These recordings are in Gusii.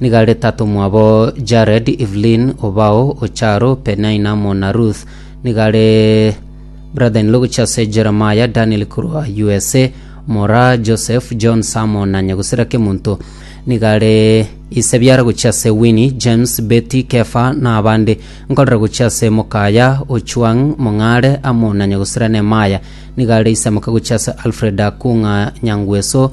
Nigo aretatomwa abo, Jared, Evelyn, Obao, Ocharo, Penina, amo na Ruth. Nigo are brother-in-law gochia ase Jeremiah, Daniel korwa USA, Mora, Joseph, John, Sam na nyagusera Kemonto. Nigo are ise biara gochia ase Winnie, James, Betty, Kefa na abande. Nkorera gochia ase mokaya, Ochuang, Mong'are, amo na nyagusera Nemaya. Nigo are ise moke gochia ase Alfred Akung'a Nyangweso,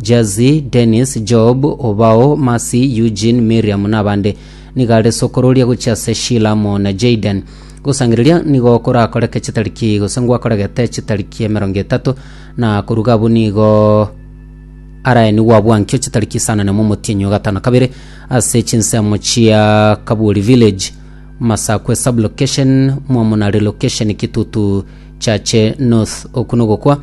Jesse, Dennis, Job, Obao, Mercy, Eugene, Miriam na abande. Nigo are sokororia gochia ase Sheila amo na Jayden. Gosangereria nigo korakoreke chitariki gose ngwakoregete chitariki emerongo etato na koruga abwo nigo araenigwe abwankio chitariki isano na emo omotienyi o gatano kabere ase chinsemo chia Kaburi Village, Masakwe Sub-Location, Mwamuna Relocation, Kitutu Chache North. Oku nogokwa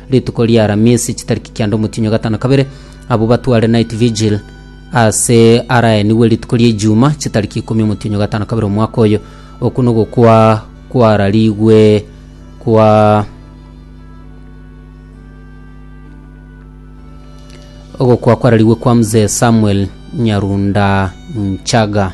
Rituko ria Aramisi chitariki kianda omotienyi o gatano kabere, abwo batware night vigil ase araenigwe rituko ria Ijuma chitariki ikomi omotienyi o gatano kabere omwaka oyo. Oku nogokwa kwararigwe kwa ogokwa kwararigwe kwa Mzee Samuel Nyarunda Nchaga.